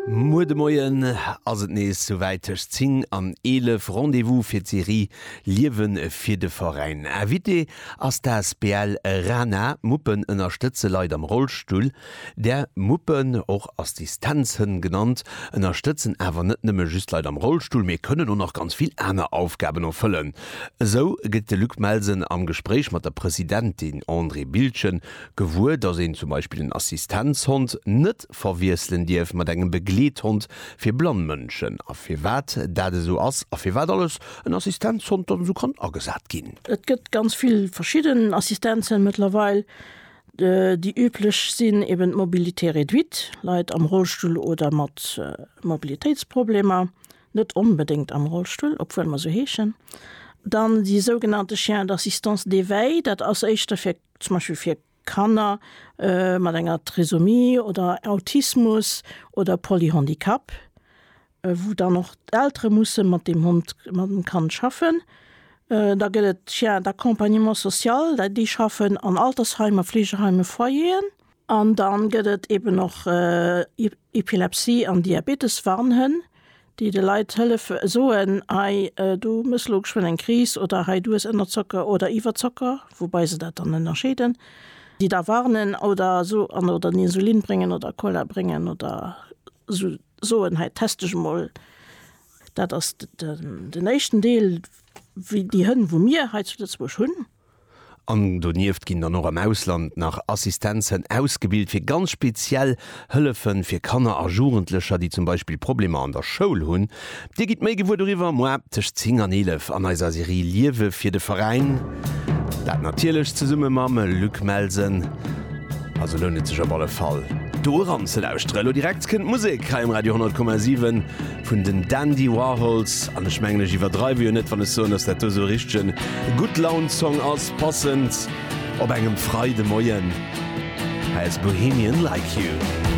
Muer de Moien ass et nees sou wäit, tëscht 10 an 11 Rendez-vous fir d'Serie Liewe fir de Veräin. Invité ass d'asbl Rana, Muppen ënnerstëtze Leit am Rollstull. Där Muppen, och Assistenzhënn genannt, ënnerstëtzen awer net nëmme just Leit am Rollstull, mee kënnen och nach ganz vill aner Aufgaben erfëllen. Esou gëtt de Luc Melsen am Gespréich mat der Presidentin Andrée Bildgen Gewuer, dass een zum Beispill en Assistenzhond net verwiesselen dierf mat engem Begleethond fir blann Mënschen a firwat dat esou ass a firwat alles en Assistenzhond dann esou kann agesat ginn. Et gëtt ganz vill verschidden Assistenzen mëttlerweil. Déi üblech sinn eben d'Mobilité réduite, Leit am Rollstull oder mat Mobilitéitsproblemer, net onbedéngt am Rollstull, obwuel mer se heeschen. Dann déi sougenannte Chiens d'assistance d'éveil, dat ass éischter fir zum Beispill fir Kanner mat enger Trisomie oder Autismus oder Polyhandicap, wou dann och d'Eltere musse mat deem Hond, mat dem Kand schaffen. Da gëtt et d'Chiens d'accompagnement social, déi schaffen an Altersheim a Fleegeheim a Foyeren. An dann gëtt et eben och Epilepsie an Diabetes-Warnhënn, déi de Leit hëllefe soen, hei du hues elo geschwënn eng Kris oder hei du hues Ënnerzocker oder Iwwerzocker, woubai se dat dann ënnerscheeden, déi da warnen oder so an oder den Insulin bréngen oder Cola bréngen oder so soen, hei test dech emol. Dat ass den éischten Deel, wéi déi Hënn wou mir hei zu Lëtzebuerg hunn. An donieft ginn dann och am Ausland nach Assistenzen ausgebilt fir ganz speziell Hëllefe fir Kanner a Jugendlecher, déi zum Beispill Problemer an der Schoul hunn. Dir gitt méi gewuer doriwwer moar tëscht 10 an 11 an eiser Serie Liewe fir de Veräin. Dat natierlech zesumme mam Luc Melsen. Also lount et sech op alle Fall do eranzelauschteren. Elo direkt kënnt Musek hei um Radio 10,7. vun den Dandy Warhols, an ech mengen ech iwwerdreiwe jo net wann ech soen, dass dat do esou e richtegen Gutt-Laun-Song ass, passend op engem Freidemoien, hei ass Bohemian Like You.